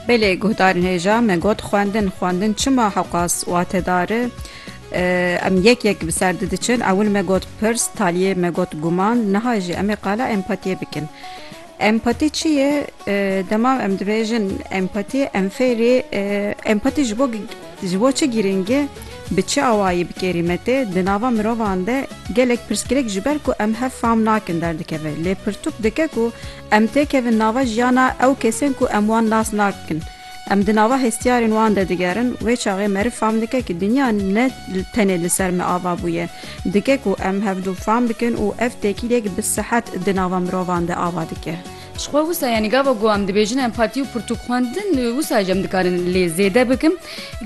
Belê guhdarên hêja me got xwendin, xwendin çima hewqas watedar e, em yek yek bi ser di diçin, ewil me got pirs, taliyê me got guman, niha jî em ê qala empatiyê bikin. Empati çi ye? Dema em dibêjin empati, em fêrî empati ji bo ji bo çi girîng e, bi çi awayî bi kêrî me tê, di nava mirovan de gelek pirsgirêk ji ber ku em hev fam nakin derdikeve. Lê pirtûk dike ku, Em têkevin nava jiyana ew kesên ku em wan nas nakin. Em di nava hestiyarên wan de digerin, wê çaxê meriv fam dike ku dinya ne tenê li ser me ava bûye. Dike ku em hevdu fam bikin û ev têkiliyek bi sihet di nava mirovan de ava dike. Jixwe wisa yanî gava ku em dibêjin em patî û pirtûk xwendin, wisa jî em dikarin lê zêde bikin.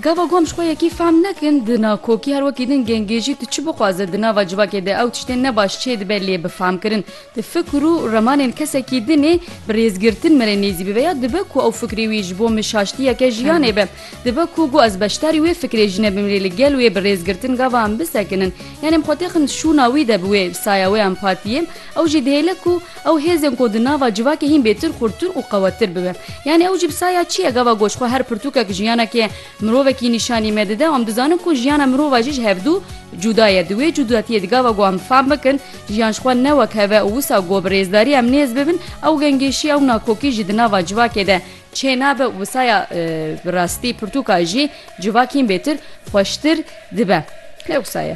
Gava ku em jixwe yekî fam nekin, di nakokî her wekî din gengêjî tu çi bixwaze di nava civakê de ew tiştên ne baş çêdibe lê bi famkirin, Di fikr û remanên kesekî din ê bi rêzgirtin min ê nêzî bibe ya dibe ku ew fikrê wî ji bo min şaştiyeke jiyanê be. Dibe ku got ez beşdarî wê fikrê jî nebim lê li gel wê bi rêzgirtin gava em bisekinin. Yanî em xwe têxin di şûna wî de bi wê saya wê empatiyê. Ew jî dihêle ku ew hêzên ku di nava civakê hîn bêtir xurttir û qewettir bibe. Yanî ew jî bi saya çi ye? Gava got ji xwe her pirtûkek jiyanekê Mirovekî nîşanî me dide, em dizanin ku jiyana mirova jî ji hevdû cuda ye. Di wê cudatiyê di gava ku em fam bikin jiyan ji xwe ne wek hev e û wisa ku bi rêzdarî em nêz bibin ew gengêşî ew nakokî jî di nava civakê de çê nabe û wisa ya bi rastî pirtûka jî civakîn bêtir xweştir dibe. Ne wisa ye.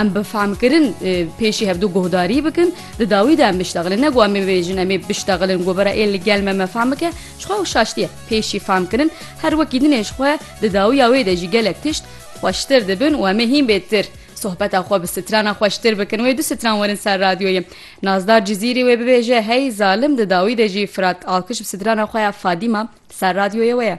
Em bi fehmkirin pêşî hevdu guhdarî bikin, di dawî de em biştexilin. Ne ku em ê bêjin em ê biştexilin ku bira ê li gel me me fehm bike, ji xwe ew şaştiye. Pêşî fehmkirin her wekî din ê ji xwe di dawiya wê de jî gelek tişt xweştir dibin û em ê hîn bêtir sohbeta xwe bi strana xweştir bikin. Wê du stran werin ser radyoyê. Nazdar Cizîrî wê bibêje hey zalim di dawî de jî Firat Alkiş bi strana xwe ya Fadîma ser radyoyê we ye.